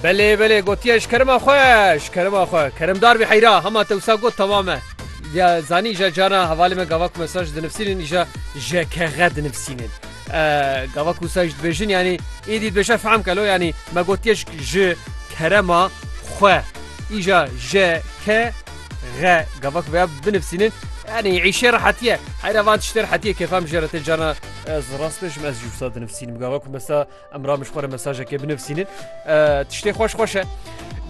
Belê belê gotiye ji kerima xwe ji kerima xwe kerimdar bî heyra hema te wisa got temam e. Ya zanî îja cana hevalê me gavak mesaj dinivîsînin îja ji kexe dinivîsînin. Gavak wisa ji dibêjin yanî êdî dibêje fehm kelo yanî me gotiye ji kerema xwe îja ji ke غ gavak veya binivîsînin yani îşê rehetiye heyra van tiştê rehetiye kefam jê re te cana ez rast bêjim ez jî wisa dinivîsînim gavak mesela Em ramiş xwe re mesajekê binivîsînin. Tiştê xweş xweş e.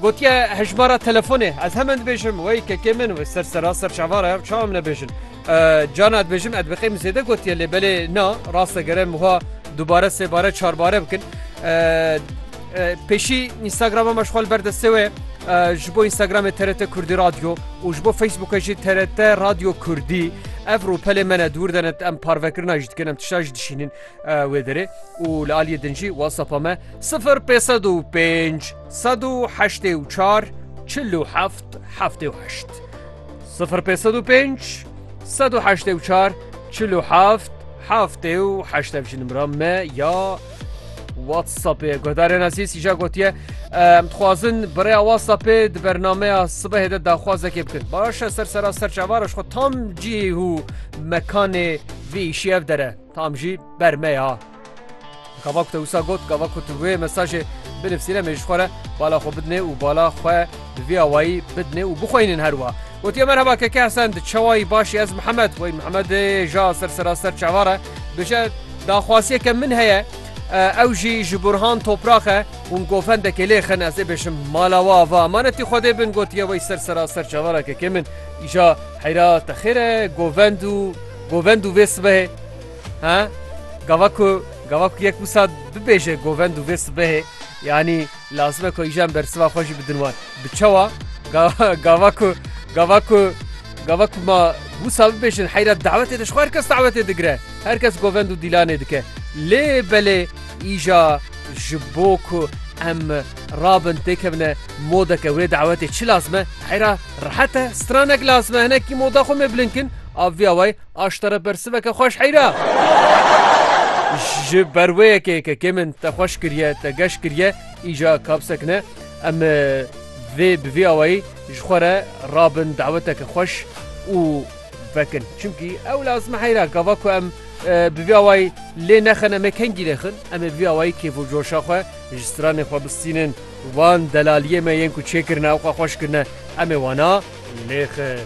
Gotiye hejmara telefonê ez hemen dibêjim wey kekê min wê ser sera ser çavara ev çawa min nebêjin. Cana dibêjim ez bixêm zêde gotiye lê belê na raste gere muha dubare sêbare çarbare bikin. Pêşî Instagrama me xwal berdestê wê ji bo Instagramê TRT Kurdî Radyo û ji bo Facebookê jî TRT Radyo Kurdî. ev rûpelê me ne dûr denet em parvekirina jî dikin em tişta jî dişînin Wê derê û li aliyê din jî WhatsApp-a me sifir pê sed û pênc sed û heştê û çar çil û heft heftê û heşt sifir pê sed û pênc sed û heştê û çar çil û heft heftê û heşt ev jî nimra me ya WhatsAppê guhdarê nasî sîja gotiye em dixwazin birêya WhatsAppê di bernameya sibehê de daxwazekê bikin baş e ser sera ser çavara xwe tam cî û mekanê vî îşî ev dere. Tam jî ber me ya. Gava ku te wisa got, gava ku tu wê mesajê binivsîne me ji xwe re bala xwe bidinê û bala xwe bi vî awayî bidinê û bixweynin her wa. Gotiye merheba keke Hesen di çewayî başî ez Mihemed weyn Mihemedê ja ser seraster çavar e. Bije daxwasiyeke min heye ew jî ji Burhan Toprak e hûn gofendekê lê xin ez ê bêjim mala we ava emanetî xwedê bin gotiye wey ser seraster çavar e keke min îja heyra te xêr e govend û Govend û vê sibehê he gava ku gava ku yek wisa bibêje govend û vê sibehê yanî lazim e ku îjan bersiva xwe jî bidin wan. Bi çawa gava ku gava ku gava ku ma wisa bibêjin heyra dawetê de ji xwe her kes dawetê digire. Her kes govend û dîlanê dike. Lê belê îja ji bo ku em rabin têkevine modeke wê dawetê çi lazim e? Heyra rehet e, stranek lazim e hinekî moda xwe mê bilind kin. A viya way aştara bersiveke xweş heyra. Ji ber wê yekê kekê min te xweş kiriye, te geş kiriye, îca kapsek ne. Em vê bi vî awayî ji xwe re rabin daweteke xweş û vekin. Çimkî ew lazime heyra gava ku em bi vî awayî lê nexin em ê kengî lê xin. Em ê bi vî awayî kêf û coşa xwe ji stranê xwe bistînin. Wan delaliyê me yên ku çêkirine û xwe xweş kirine em ê wana lê xin.